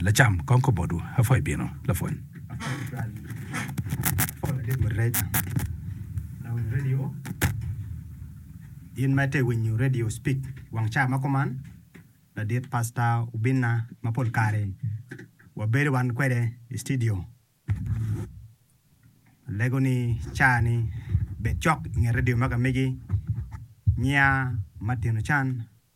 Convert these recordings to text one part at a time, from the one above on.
Lacam, kong kobodwu, apwa ibino, lapwony. In ma ite winyo redio, speak wang ca ma kuman. Ladit pasta obinna ma pol kare wabedo wan kwede i citidio. Alego ni ca ni bed cok inget redio ma ka megi nya matino can.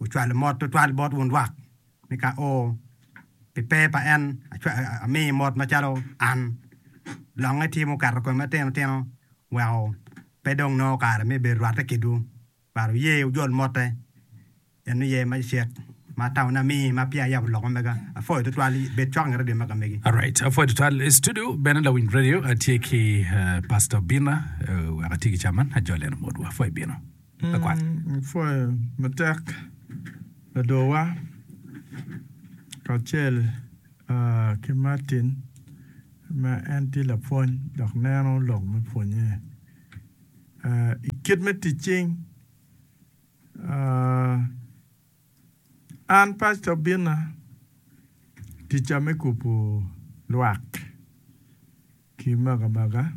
Ocwalo mot twatwal bot wun lwak, ni ka o, pi pe pa en, amiyi mot macalo an. Lok itye muketo kome matino tino weko pe dong nongo kare me bedo rwatte kidwu, but wuye wujol motte, en oye ma cek ma tamone amiyi ma peya ayabo lok mamega. Apwoyo twatwal, bed cok inge redio mega megi. Alright, apwoyo twatwal. I studio bene lawiny redio atye ki Pastor Bina, wek atye ki caman ajol eno motwa. Apwoyo Bina. Wupwoyo matek ladowa kacel ki Martin ma en tye lapwony dok neno lok me pwonye. I kit me tic cing, an pacita obinna ticca me kubo lwak. ki makabaka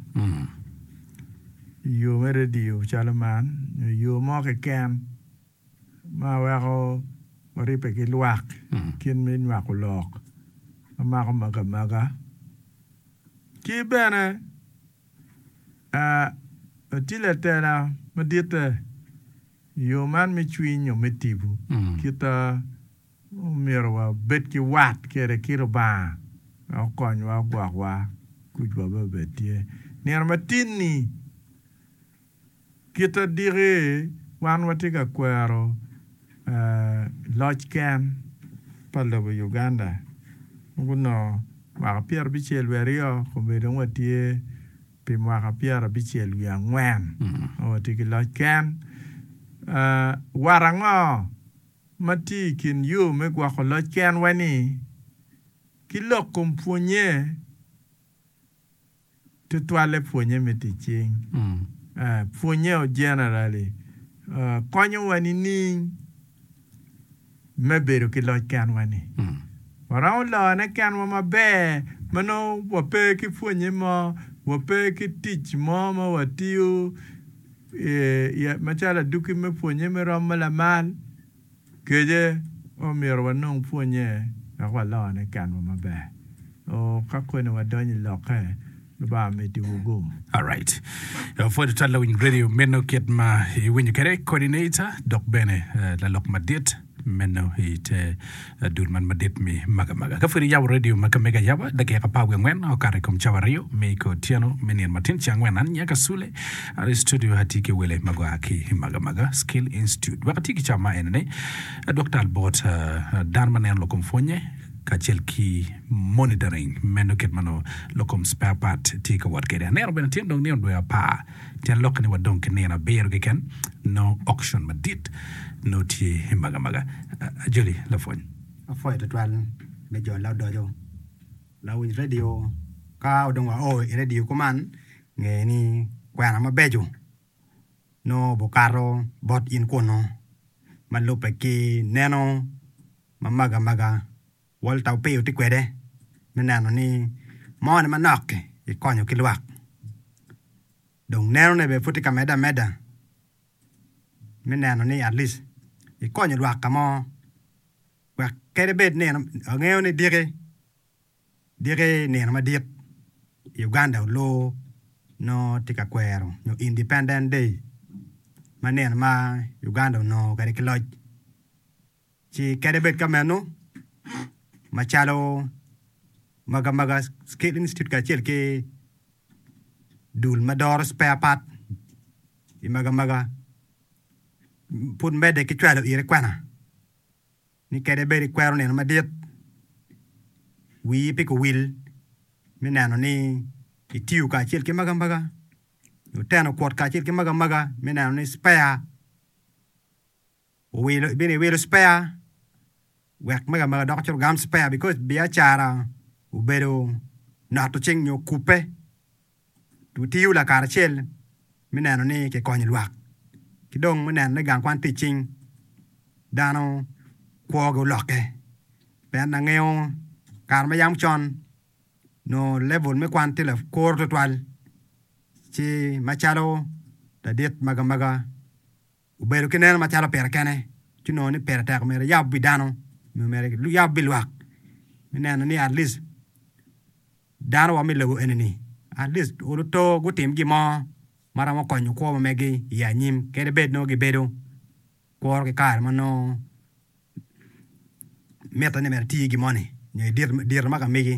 iyo me radio calo man nyo iyo mo keken ma weko waribbe ki lwak kit me nywako lok ma mako makamaga ki bene watye latela maditte iyo man me cwiny nyo me tibu kita Omyero wabed ki wat kede kit Lubanga me okonywa ogwokwa kucwa bene obed tye. Nino matin-ni, kit adiki wan watye ka kwero loc ken pa lobo Uganda ma gunongo mwaka pyerabicel wiye aryo kome dong watye pi mwaka pyerabicel wiye angwen ma watye ki loc ken. Wat ango? ma tye i kin yo me gwoko loc kenwa-ni ki lok kom pwonnye tutwalle, pwonnye me tic cing, pwonnye o generally, konyowa nining me bedo ki loc kenwa-ni? Waromo lone kenwa maber ma nongo wape ki pwonnye mo, wape ki tic mo ma watiyo. Macalo adwogi me pwonye me rom ma lamal kece, omyero wanong pwonye dok walone i kenwa maber. Ka koni wadonyo i lokke, Lubanga midiwu gum. Alright. Pwod ital lawiny redio meno kit ma iwinyo kwede, coordinator dok bene lalok madit. Meno i te dul man madit me magamaga. Ka pwod iyabo redio ma ka mege ayaba, dakika apar wiye angwen okato i kom cawa aryo me i kor otyeno me nino matin ce angwen. An Nyaka Sule, an i studio atye ki wele ma gua ki i magamaga Skill Institute. Wek ati ki cawa ma enene, adwok tal bot dano ma neno lokom pwonye kacel ki monitoring meno kit ma nongo lokom spare part tye ka wot kwede. Aneno bene tyen dong nino dwe apar. Tyen lokke ni wa dong ki nino abiro keken nongo auction madit nongo tye i magamaga. Ajoli lapwony. Apwoyo twatwal me jo laodoco, lawiny radio. Ka dong wa o i radio kuman, nge ni kwena mabeco nongo obukato bot in kunu ma lubbe ki neno ma magamaga. Walter opiyo tye kwede me neno ni mone manok-ki kikonyo ki lwak, dong nenone bene pud tye ka medde ameda me neno ni at least ikonyo lwak ka mo wek kadi bed ni en angeyo ni diki diki nino madit i Uganda olor nongo tye ka kwero nyo independent day ma nino ma Uganda onongo kwede ki loc. Ci kadi bed ka meno, macalo Magamaga Skill Institute kacel ki Dul ma Doro Spare Part i Magamaga pud medde ki cwalo iri kwena ni kadi bed ikwero nino madit, wii pe kuwil me neno ni itiyo kacel ki Magamaga nyo teno kwot kacel ki Magamaga me neno ni spare Owilo ibino iwilo spare wek mega mega doko cito gam spare because biacara obedo noto cing nyo kubbe wutiyo lakaracel me neno ni ki konyo lwak ki dong me neno ni gang kwan tic cing dano kwo gi oloke pien angeyo kare ma yam con nyo level me kwan tye lakuru tutwal ci macalo ladit mega mega Obedo ki neno macalo pire kene ci nongo ni pire tek omyero eyab wi dano nyo omyero eyab wi lwak me neno ni at least dano wa me lobo eni-ni at least oluto gutim gin mo ma romo konyo kwo ma megi i anyim kadi bed nongo gibedo kuro ki kare ma nongo mitte ni myero eti iye gin moni nyo i diro ma ka megi.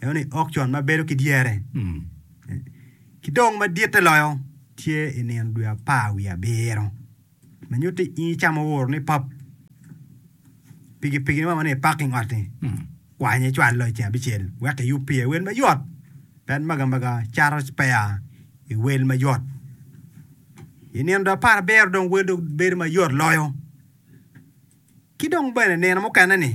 Eno ni okcon ma bedo ki dyere ki dong ma ditte loyo tye i nino dwe apar wiye abiro, ma nyuto i i ca ma wuoro ni pop pikipikine ma wanongo i parking ot-ti kwanye icwalo i ceng abicel wek iyub pire wel mayot pien maga maga cato spare i wel mayot. I nino dwe apar abiro dong wel dong bedo mayot loyo. Ki dong bene nino mukene-ni.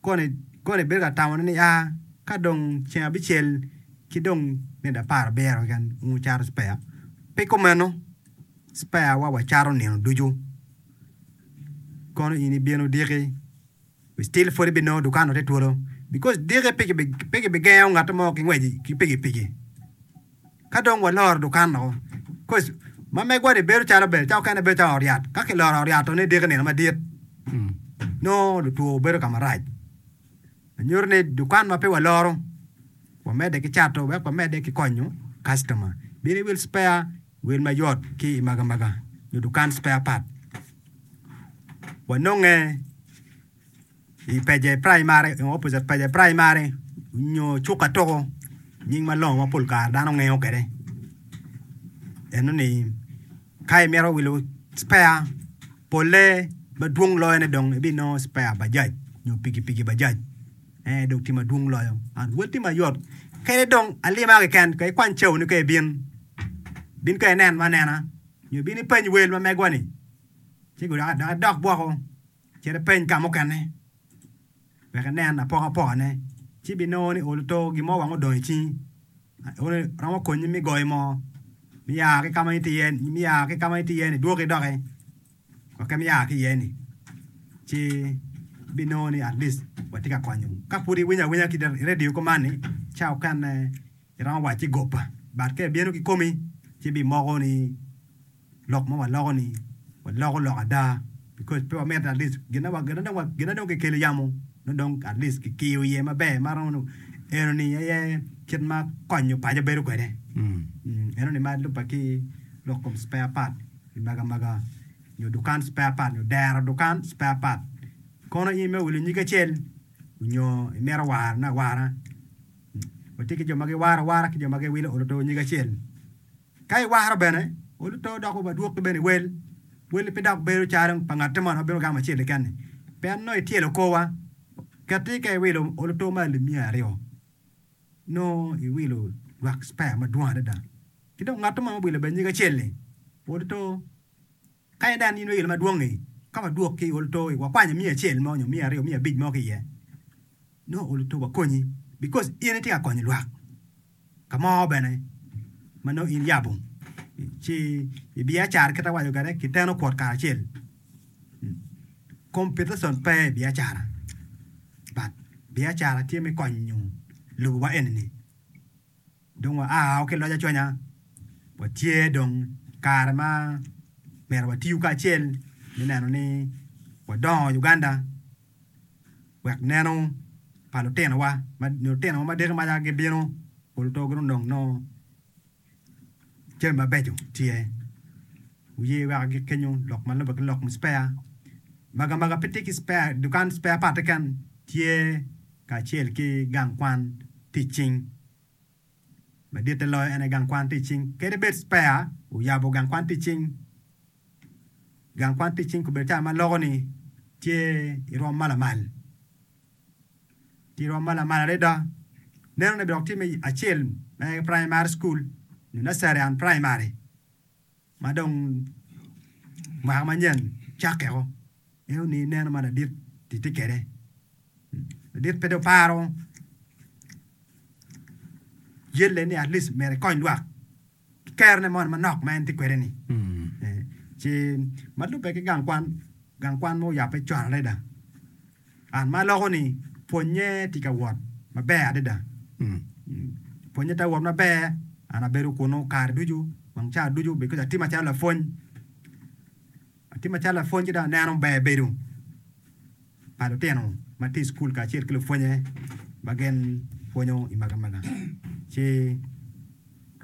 koni, koni bedo ka tamone ni, aa, ka dong ceng abicel ki dong nede apar abiro keken, wun wucato spare? Pi kumeno, sparewa wacato nino ducu. Kono in ibino odiki, we still pwod ibinongo dukan-nu tye twolo, because diki pe kibigengo ngat mo ki ngwec ki pikipiki. Ka dong waloro dukan woko, koc ma megwa-ni bedo calo bel, ca okene bedo calo ot yat. Ka kiloro ot yat-to ni diki nino madit, nongo lutwo bedo ka marac. Nyuto ni dukan ma pe waloro, wamedde ki cato wek wamedde ki konyo kacitoma. Bino iwil spare wil mayot ki i Magamaga nyo dukan spare part, wanonge. I pece praimari nyo opposite pece praimari nyo cuka toko nying malongo ma pol kare dano ngeyo kwede eno ni ka imito wilo cpeya pole madwong loyo ne dong ibinongo cpeya Bajaj nyo pikipiki Bajaj en aye dong tye madwong loyo and wel tye mayot kadi dong alima keken kong ikwany caoni ka ibin bin ka ineno anena nyo bin ipeny wel ma megwa ni ci dok idok woko. Cit ipeny ka mukene wek inen apokapokane, ci ibinongo ni olo to gin mo weng odong i cingi. Eno romo konyi me goyo moo, me ya ki ka ma itye iye-ni, idwog ki doki wek en ya ki iye-ni. Ci ibinongo ni atleast watye ka konyo. Ka pud iwinyo awinya ki i redio kuman-ni ca okene. Iromo wacci goppa, but ka ibino kikomi ci bimoko ni lok ma waloko ni waloko lok ada because pe wamito at least gin ma gin ma dong kikelo i yamo nongo dong at least kikiyo iye maber ma romo nongo eno ni aye kit ma konyo paco bedo kwede eno ni ma lubbe ki lok kom spare part ki mege amega nyo dukan spare part nyo dero dukan spare part kono in me wilo nyig acel nyo imito warone awara. Watye ki jo ma giwaro awara ki jo ma giwilo olo too nyige acel. Ka iwaro bene olo too dok wa dwoki bene iwel, welli pe dok bedo calo pa ngatte moni ma bino gamo acel keken-ni pien nongo ityelo korwa. Kit-ti ka iwilo olo too ma alip miya aryo, nongo iwilo lwak cpea madwong adada. Ki dong ngatte moni ma obwilo bene nyige acel-li, olo too. Ka en dong anino ilo madwong-ngi, ka wadwok ki i ol too-i, wakwanya miya acel mo nyo miya aryo, miya abic mo ki iye, nongo ol too wakonyi bikos in itye ka konyo lwak. Ka mo bene ma nongo in yabo ci ibiacara kit awaco kwede kiteno kwot kacel, competition pe i biacara but biacara tye me konyo lobo wa eni-ni. dong waa-o ki loc aconya, watye dong kare ma myero watiyu kacel me neno ni wadongo Uganda wek neno pa lutinowa nyo lutinowa ma deki maca gibino pol to gidong dong nongo jami mabeco tye. Wuye wek agik kenyo lok ma lubbe ki lok muspea. Maga maga pe tye ki spare dukan spare part keken tye kacel ki gang kwan tic cing. Maditte loyo en aye gang kwan tic cing. Kadi bed Spare oyabo gang kwan tic cing, gang kwan tic cing kobedo cawa ma loko ni tye i rwom ma lamal, tye i rwom ma lamal adada. Nenone bene dok tye me acel me Primary School nyo Nursery and Primary. ma dong mwaka manyen cakkeo ingeyo ni ineno ma ladit ti ti kede ladit pe dong paro yelle ni at least myero ikony lwak ki kerone moni manok ma en ti kwede ni ci ma lube ki gang kwan gang kwan ma oyabbe con adada An ma aloko ni pwonnye tye ka wot maber adada. Pwonnye tye ka wot maber, an abedo kunu kare ducu, wang ca ducu obedo kwede atima calo lapwony. Atima calo lapwony ci dong aneno ber bedo pa lutino ma tye i cukul kacel ki lupwonye ma gin pwonyo i magamaga. Ci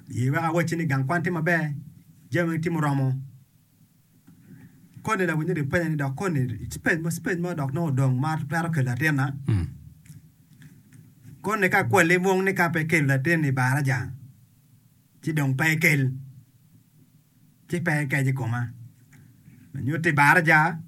ye weko awacci ni gang kwan tye maber, jami weng tye muromo. koni la winyo ni penya ni dok koni space mo space mo dok nongo odong ma twero kelo latina mm. koni ka kwali mung ni ka pe kelo latin i baraja ci dong pe kel ci pe ekec i koma nyuti baraja